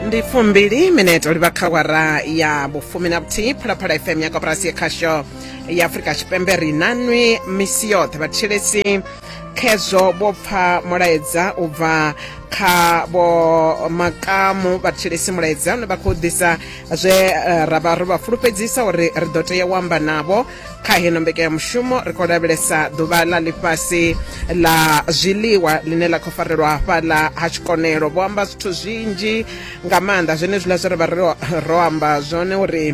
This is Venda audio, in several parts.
ndi fumbili mineto livha kha wara ya vhufumi na vhuthihi phalaphala fm ya koporasi ya khasho ya afurika tshipembe ri na nwi misi yoṱhe vhathetshelesi khezwo vho pfa mulaedza u bva kha vho makamu vhathetshelesi mulaedza une vha khou ḓisa zwe eh, ra vha ro vha fulufhedzisa uri ri ḓo tea u amba navho kha heno mbekanyamushumo ri khou lavhelesa ḓuvha ḽa ḽifhasi ḽa zwiḽiwa ḽine ḽa khou farelwa hafhaḽa ha tshikonelo vho amba zwithu zwinzhi nga maanḓa zwenezwiḽa zwe ri vha ro amba zwone uri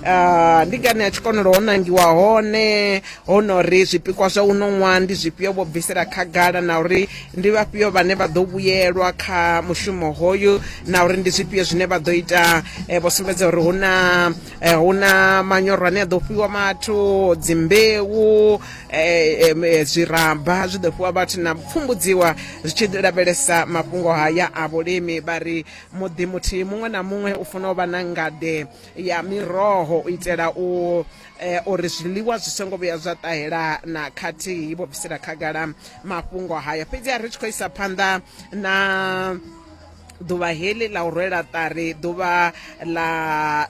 Uh, ndi ngani ya tshikonelo ho nangiwa hone ho no ri zwipikwa zwa uno ṅwaha ndi zwifhio vho bvisela khagala na uri ndi vhafhio vhane vha ḓo vhuyelwa kha mushumo hoyu na uri ndi zwifhio zwine vha ḓo ita eh, vho sumbedza uri hu na eh, hu na manyoro ane a ḓo fhiwa vhathu dzimbeu eh, em, eh, zwiraba zwi ḓo fhiwa vhathu na pfumbudziwa zwi tshi lavhelesa mafhungo haya a vhulimi vha ri muḓi muthihi muṅwe na muṅwe u funa u vha na ngade ya miroho u itela u eh, uri zwiḽiwa zwi songo vhuya zwa ṱahela na khathihi vho bvisela khagala mafhungo haya fhedzi a ri tshi khou isa phanḓa na ḓuvha heḽi ḽa u rwela ṱari ḓuvha ḽa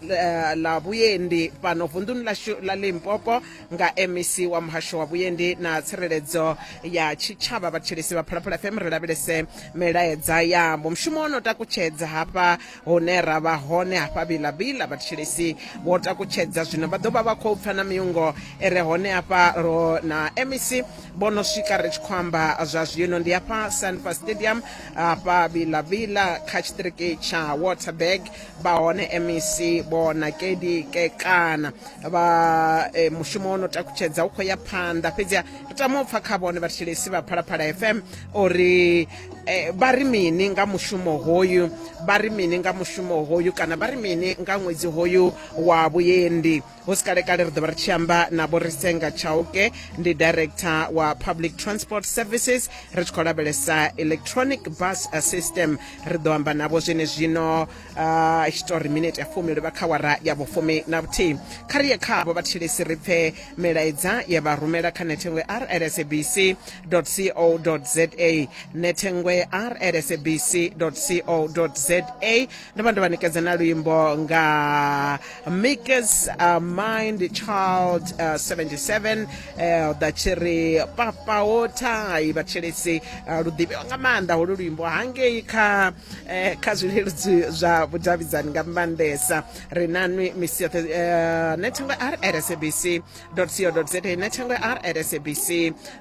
eh, ḽa vhuendi fhano vunḓuni ḽashu ḽa limpopo nga mec wa muhasho wa vhuendi na tsireledzo ya tshitshavha vhathetshelesi vha phalaphala fm ri lavhelese milaedza yavho mushumo wo no takutshedza hafha hune ra vha hone hafha vilavila vhathetshelesi vho takutshedza zwino vha ḓo vha vha khou pfa na miungo e re hone hafha ro na mec vho no swika ri tshi khou amba zwa zwino ndi hafha sanfa stadium hafha vila vila kha tshiṱiriki tsha waterberg vha hone mec vho nakedi kekana vha e, mushumo wo no takutshedza u khou ya phanḓa fhedzi ri tama u pfa kha vhone vhathetshelesi vha phalaphala fm uri eh, vha ri mini nga mushumo hoyu vha ri mini nga mushumo hoyu kana vha ri mini nga ṅwedzi hoyu wa vhuendi hu si kalekale ri dovha ri tshi amba na vho risenga chauke ndi director wa public transport services ri tshi khou lavhelesa electronic bus system ri ḓo amba navho zwene zwino i tshi tori minete ya fumi livha kha wara ya vhufumi na vhuthihi kha ri ye khavho vhathetshelesi ri pfe milaedza ye vha rumela kha nethengwe rlsabc co za nethengwe rlsabc co za ndo vha ndo vha ṋekedza na luimbo nga makers uh, mind child uh, 77 uh, ḓa tshi ri papa wo thai vhatshelesi uh, lu ḓivhiwa nga maanḓa holu luimbo hangei kha eh, kha zwileludzi zwa vhudavhidzani nga maanḓesa ri nanwi misi yoṱhe uh, nethengo r at sabc co za nethengo r at sabc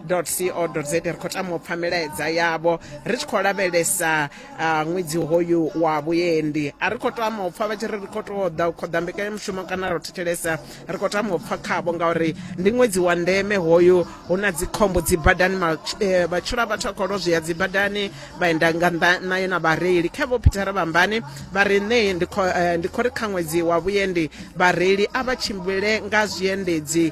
co za ri khou tama u pfa milaedza yavho ri tshi khou lavhelesa a ṅwedzi hoyu wa vhuendi a ri khou tama u pfa vha tshi ri ri khou tou ḓa u khoḓa mbekanyamushumo kana ro thetshelesa ri khou tama u pfa khavho ngauri ndi ṅwedzi wa ndeme hoyu hu na dzikhombo dzi badani eh, vhatshilo a vhathu a khou lozwea dzi badani vhaenda nga nnḓa nayo na vhareili kha vho phithara vhambani vha ri ṋe eh, ndi khou ri kha ṅwedzi wa vhuendi vhareili a vha tshimbile nga zwiendedzi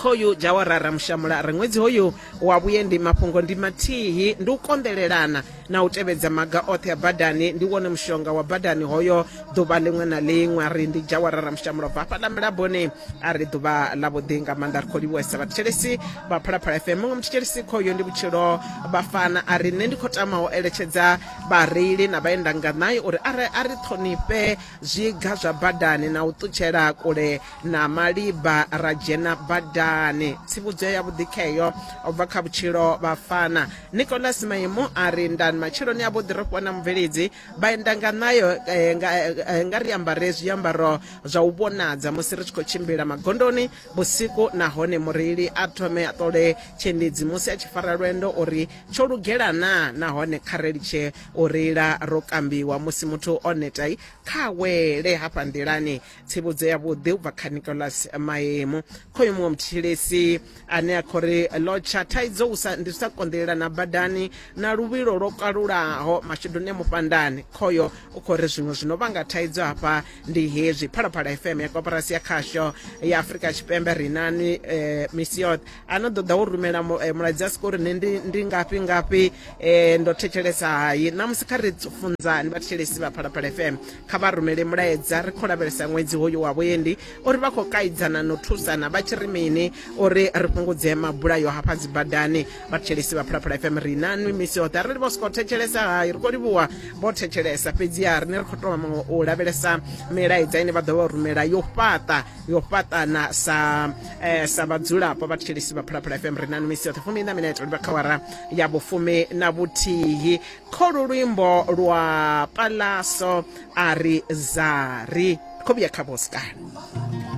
khoyu dzawarara mushamula ri ṅwedzi hoyu wa vhuendi mafhungo ndi mathihi ndi u konḓelelana na u tevhedza maga oṱhe a badani ndi wone mushonga wa badani hoyo ḓuvha ḽiṅwe na ḽiṅwe a ri ndi dzawarara mushamula bva hafhaḽa milaboni a ri ḓuvha ḽa vhuḓi nga maanḓa ri khou livhuwesa vhathetshelesi vha phalaphala fm muṅwe muthetshelesi khoyo ndi vhutshilo vhafana a ri nṋe ndi khou tama u eletshedza vhareili na vhaendanganayi uri a ri ṱhonifhe zwiga zwa badani na u ṱutshela kule na malibha ra dzhena badani tsivhudzo ya vhuḓikheyo u bva kha vhutshilo vhafana nicolas maimo a ri ndani matshiloni a vhuḓi ro fhiwa na mubveledzi vha enda nga nayo eh, nga, eh, nga ri ambare zwiambaro zwa u vhonadza musi ri tshi khou tshimbila magondoni vhusiku nahone mureili a thome a ṱole tshiendedzi musi a tshi fara lwendo uri tsho lugela na nahone kha ri litshe u reila ro kambiwa musi muthu o netai kha wele hafha nḓilani tsivhudzo yavhuḓi u bva kha nicolas maemu khoyu muṅwe muthetshelesi ane a khou ri lotsha thaidzo u sa- ndi u sa konḓelela na badani na luvhilo lwo kalulaho mashuduni a mufhandani khoyo u khou ri zwiṅwe zwino vhanga thaidzo hafha ndi hezwi phalaphala fm ya koporasi ya khasho ya afurika tshipembe rinani eh, misi yoṱhe a no ḓo ḓa wo rumela mu- eh, mulaedza a sika uri nṋe ndi- ndi ngafhi ngafhi um ndo thetshelesa hayi namusi kha ri funzani vhathetshelesi vha phalaphala fm kha vha rumele mulaedza ri khou lavhelesa ṅwedzi hoyu wa vhuendi uri vha khou kaidzana no thusana vha tshi ri mini uri ri fhungudze mabulayo hafha dzi badani vhathetshelesi vha phalaphala fm ri na nwi misi yoṱhe arali vho sokou thetshelesa hayi ri khou livhuwa vho thetshelesa fhedziha rine ri khou tou vha u lavhelesa milaedza ine vha ḓo vha rumela yo fhaṱa yo fhaṱana sa eh, sa vhadzulapo vhathetshelesi vha phalaphala fm ri na misi yoṱhe fumi na minete uri vha kha wara ya vhufumi na vhuthihi kholu luimbo lwa palaso a ri zari kho vhuya kha vhoskani